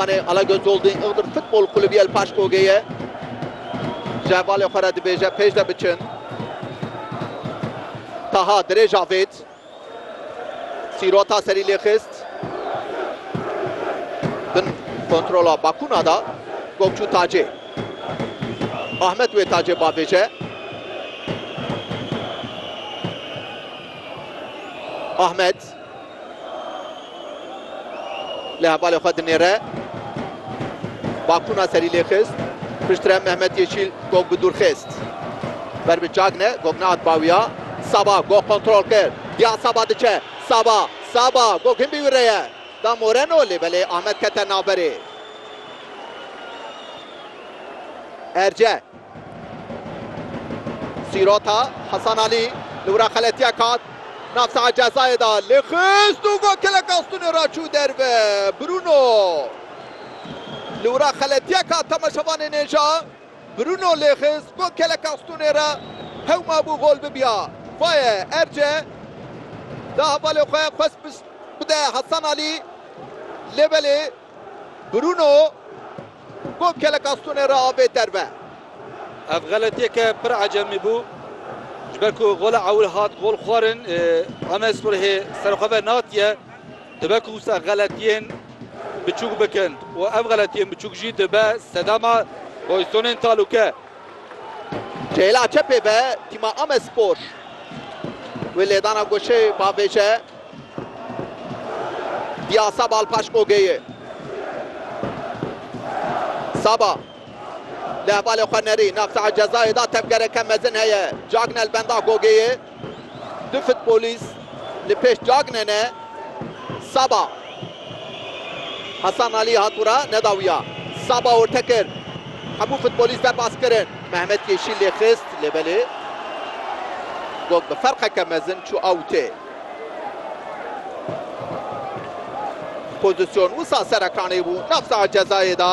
Anê Alagöz Holding Iğdır Futbol Kulübü El Paşkogeyê ji hevalê xwe re dibêje pêş de biçin. Taha dirêj avêt. Sîrota serî lê xist. Bin kontrola Bakuna da Gokçu Tacê. Ahmet wê Tacê bavêje. Ahmet Lê hevalê xwe dinêre. Bakûna serî lê xist. Piştre Mehmet Yeşîl gog bi dûr xist. Ber bi Cagne, gog nehat bawiya. Saba gog kontrol kir. Diya Saba diçe. Saba, Saba gog hin bî wî re ye. Da Moreno lê belê Amed kete navberê. Erce, Sîrota Hesan Alî li wira xeletiyek hat nav saha cezayê de lê xist û got keleka stûnê re çû derve. Bruno li wira xeletiyek hat temaşevanê nêja. Bruno lê xist got keleka stûnê re hewma bû gol bibiya. Faye Erce da hevalê xwe xwest bide Hesan Alî lê belê. Bruno got keleka stonê re avê derve. Ev xeletiyeke pir ecemî bû. Ji ber ku gola ewil hat gol xwarin, Amedspor hê ser xwe ve natiye. Dibe ku wisa xeletiyên biçûk bikin û ev xeletiyên biçûk jî dibe sedema goystonên talûke. Ceyla çepê be tîma Amedspor wê lêdana goşê bavêje diya Saba li paş Ogeyê. Saba li hevalê xwe nerî navçeya cezayê da tevgereke mezin heye cagna li benda Gogeyê. Du futbolîst li pêş Cagne ne. Saba. Hasan Alî hat ûra nedawiya. Saba orte kir. Hemû futbolîst derbas kirin. Mehmet Yeşîl lê xist lê belê gog bi ferqeke mezin çû awtê. Pozîsyon wisa ser ekranê bû nav saha cezayê de.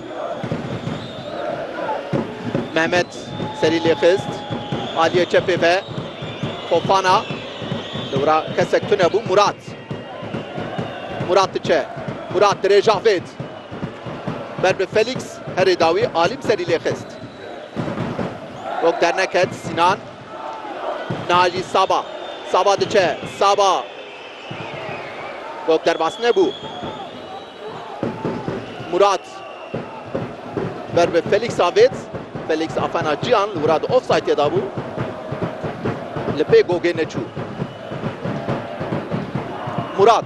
Mehmet serî lê xist aliyê çepê ve Fofana dewra kesek tune bû Murat Murat diçe Murat dirê Javêd ber bi Felîx herê dawî Alim serî lê xist wek derneket Sinan Najî Saba Saba diçe Saba Top derbas nebû. Murat ber bi Felix a vêt. Felix a fena ciyan li wira di offsaytê da bû. Li pê gogê neçû. Murat.